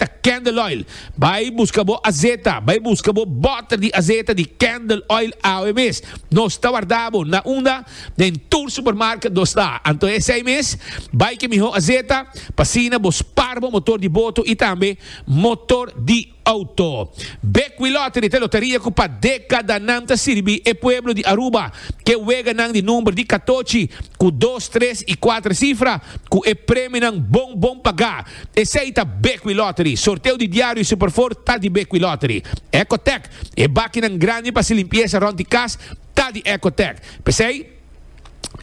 ta candle oil. Bai busca bo azeta, bai busca bo boter di azeta di candle oil awe mes. Nos ta warda bo na unda, den tur supermarket nos ta. Anto esey mes, bai ke miho azeta, pasina bo spar bo motor di boto y tambe motor di auto. Bekwil Lottery ta loteria cu pa decadanan ta sirbi e pueblo di Aruba, ke weganan di number di catochi, cu dos, tres y cuater cifra, cu e premionan bon bon paga. Esei ta Bequi Lottery. Sorteo di diario y Superford ta di Bequi Lottery. Ecotec, e bakinan grandi pa haci limpieza rond di cas ta di Ecotec. P'esei,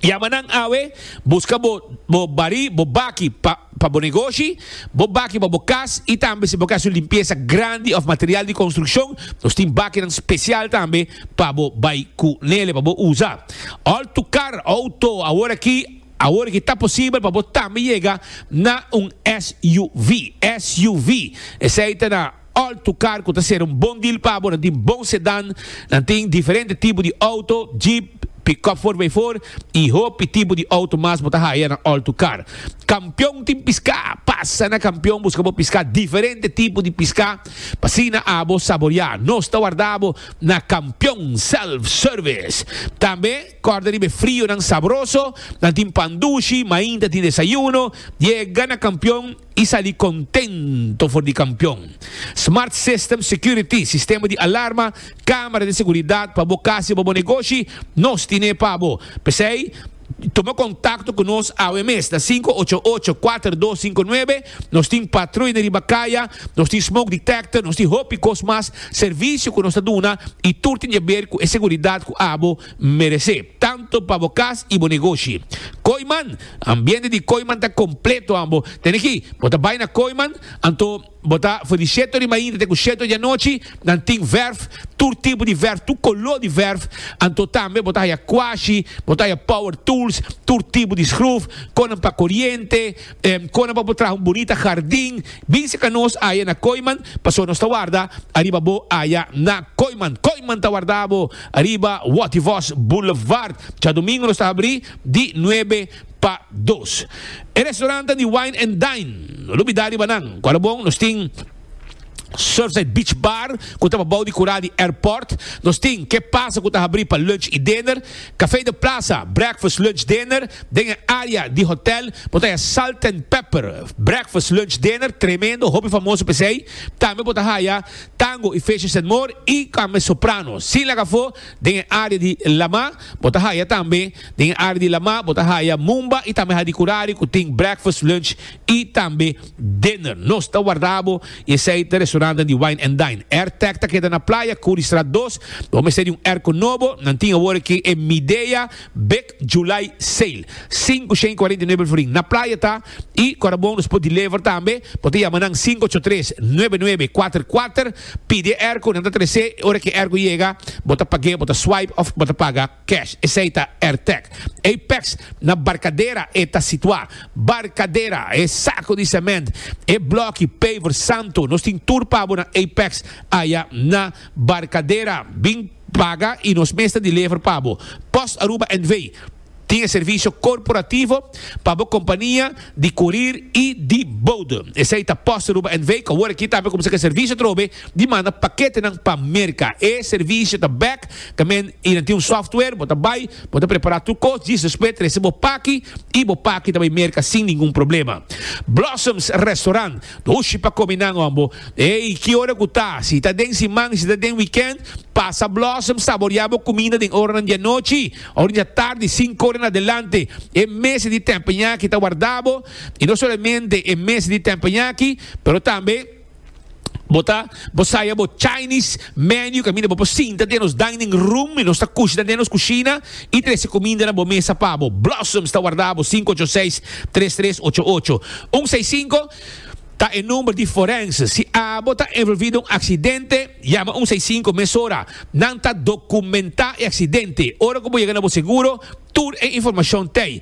yama nan awe, busca bo bo bari, bo baki pa pa bo negoshi, bo baki pa bo cas y tambe si bo ke haci un limpieza grandi of material di construccion, nos tin bakinan special tambe pa bo bay cu nele pa bo uza. All tu car, auto, aworaki, Awor ki ta posibel pa bo tambe yega na un SUV. SUV esei ta na alto kar ku ta ser un bon deal pa bo. Nan tin bon sedan, nan tin diferente tipo di auto, jeep, pick-up for by four i hopi tipo di auto mas bo ta haya na alto kar. Kampion tin piska! Pasa na Kampion buska bo piska, diferente tipo di piska pa asina abo saboriá. Nos ta warda bo na Kampion Self Service tambe. Kòrda riba e frionan sabroso, nan tin pan dushi, mainta ta tin desayuno, yega na kampion i sali kontento for di kampion. Smart System Security, sistema di alarma, kámara di seguridat pa bo kas i pa bo negoshi, nos tin'é pa bo. P'esei, tuma kontakto ku nos awe mes na sinku ocho ocho, kuater dos sinku nuebe Nos tin patruyne riba kaya, nos tin smoke detector, nos tin hopi kos mas servisio ku nos ta duna i tur tin jaber ku e seguridat ku abo merese, tantu pa bo kas i bo negoshi. Kooiman, Ambiente di Kooiman ta kompleto an bo tene aki. Bo ta bai na Kooiman, anto bo ta for di sheto di mainta te ku sheto di anochi, nan tin verf, tur tipo di verf, tur kolo di verf, anto tambe bo ta haya kwashi, bo ta haya power tools, tur tipo di skruf, konan pa koriente, Em kona pa bo traha un bunita hardin bin seka nos aya na Koiman paso nos ta warda ariba bo aya na Koiman. Koiman ta warda bo ariba Wativos Boulevard. Djadomingo nos ta habri di nuebe pa dos. E restorantan di Wine and Dine no lo bida riba nan. Kual a bon nos tin. Surfside Beach Bar, cu ta pa bao di cura di airport. Nos tin Que Pasa cu ta habri pa lunch y dinner. Café de Plaza, breakfast, lunch, dinner. Den e area di hotel bo ta haya Salt and Pepper, breakfast, lunch, dinner, tremendo, hopi famoso pesey. Tambe bo ta haya Tango y Fishes and More y tambe Soprano. Sin laga afo, den e area di La Ma bo ta haya tambe, den e area di La Ma bo ta haya Mumba y tambe Hadi Curari cu tin breakfast, lunch y tambe. Dinner. Nos ta warda bo i esei ta restauranten di Wine and Dine. Airtech ta keda na playa Curriestraat dos. Bo mester di un airco nobo. Nan tin awor aki e Midea Big July Sale. Sinku shen cuarenta y nuebe el forin. Na playa ta i cu ta bon nos por deliver tambe. Bo ta yama nan sinku ocho tres, nuebe nuebe, kuater kuater. Pidi e airco, nan ta trese. Ora ki e airco yega bo ta pag'é, bo ta swipe of bo ta paga. Cash, esei ta Airtec. Apex, na Barcadera e ta situa. Barcadera, e saco di cement, e bloki, paver, santo, nos tin tur pabo na Apex aya na Barcadera. Bin paga y nos mes ta delever pabo. Post Aruba NV. tin e servicio corporativo pa bo compania di curir y di bodo. Esei ta Post Aruba NV cu awor aki ta haber cuminsa cu e servicio atrobe Di manda paketenan pa Merka. E servisio ta bek tamen y nan tin un software. Bo ta bay, bo ta prepara tur cos, djis despues trese bo paki y bo paki ta bay Merka sin ningun problema. Blossoms Restaurant, Dushi pa come nan hombo. Ey, ki ora cu ta, si ta den siman y si ta den weekend, pasa Blossoms saborea bo cuminda den oranan di anochi or dja tardi cinco ora en adelante. E mesa di tempenyaki ta warda bo y no solamente e mesa di tempenyaki pero tambe. Bo ta, bo saya bo Chinese menu caminda bo por sinta den nos dining room y nos ta cushna den nos cushina y trece cuminda na bo mesa pa bo. Blossoms ta warda bo cinco ocho seis tres tres ocho ocho un seis cinco ta e number di forense. Si abo ta envolvi den un accidente, yama un seis cinco mesora. Nan ta documenta e accidente. Ora cu bo yega na bo seguro, tur e informacion t'ey.